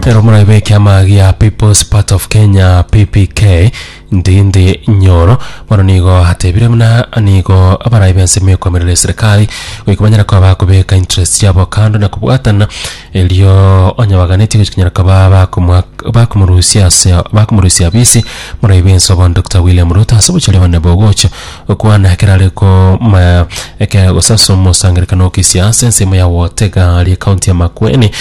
Ero muraibe ekiama gia People's Part of Kenya PPK ndindi nyoro bono nigo atebire buna nigo abaraibe ensemo ekomerera eserikali goika banyare koba bakobeka interest yabo kando na kobwatana erio onye baganeti gochia konyara koba bakomwa bakomorusia ase bakomorusia bisi muraibe ense obo Dr. William Ruto ase obochare bane bogocha Gokwana ekero are koma ekero gose ase omosangererekano o kisiasa ensemo ya Wotegari ekaunti ya Makueni,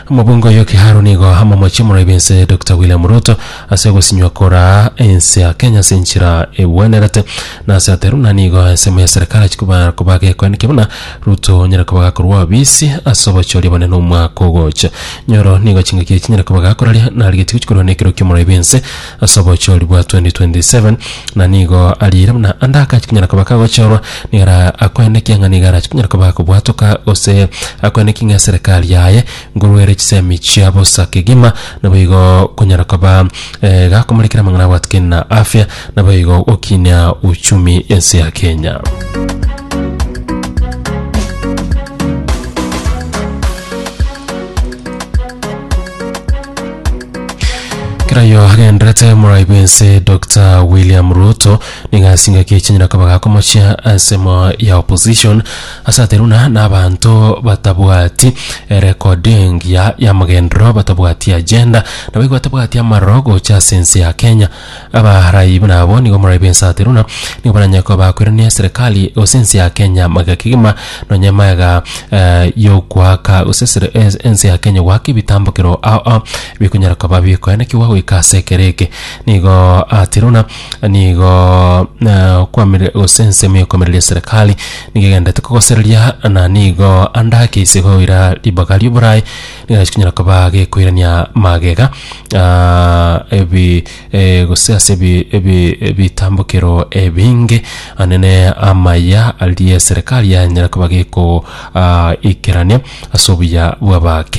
omobunge oyo Kiharu nigo amomochie omoraibi ense Dokita William Ruto ase ogosinywa koraa ense ya Kenya ase enchera egwenerete na ase ateru na nigo ensemo ya serikali achia koba koba gekoenikia buna Ruto onyare koba gakorwa obisi ase obochori obonene omwaka ogocha. Nyoro nigo chingaki echi chinyare koba gakoraria narigetie gochia korwa na ekero kia omoraibi ense ase obochori bwa 2027, na nigo ariire buna ande akache konyara koba kagochorwa, nigo ara akoenekie ng'a nigo arache konyara koba kobwatoka, gose akoenekie ng'a eserekari yaye nguru ere chisemi chia bosa kegima, naboigo konyara koba gakomorekera amang'ana abwatikani na afya, naboigo gokinia uchumi ense ya Kenya. kerayo agenderete moraibu ense dr william ruto niga asingaki echinyira koba gakomochia ensemo ya opposition ase ateruna na abanto batabwati erekodi engiya y'amagenderero batabwati agenda nabo igo batabwati amaroro gocha ase ense ya kenya Abaaraai buna abo nigo morabe bw'ensaato runa nigo baranyare koba bakoirania eserekari gose ense ya Kenya magega kegima nonye magega yogoaka gose esere es- ense ya Kenya goaka ebitambokero ao ao bikonyara koba bikoenekiwa goika ase ekero eke. Nigo ati runa nigo na kwamire gose ensemo ya koimereria eserekari nigo egenderete kogosereria na nigo ande ake ise goira ribaga ri'oboraai eh, chikonyara koba gekoirania magega ah, ebi eh, gose ase ebi- ebi- ebitambokero ebinge anene amaya aria eserekari yanyara koba geko ah, ikerania ase obuya bw'abake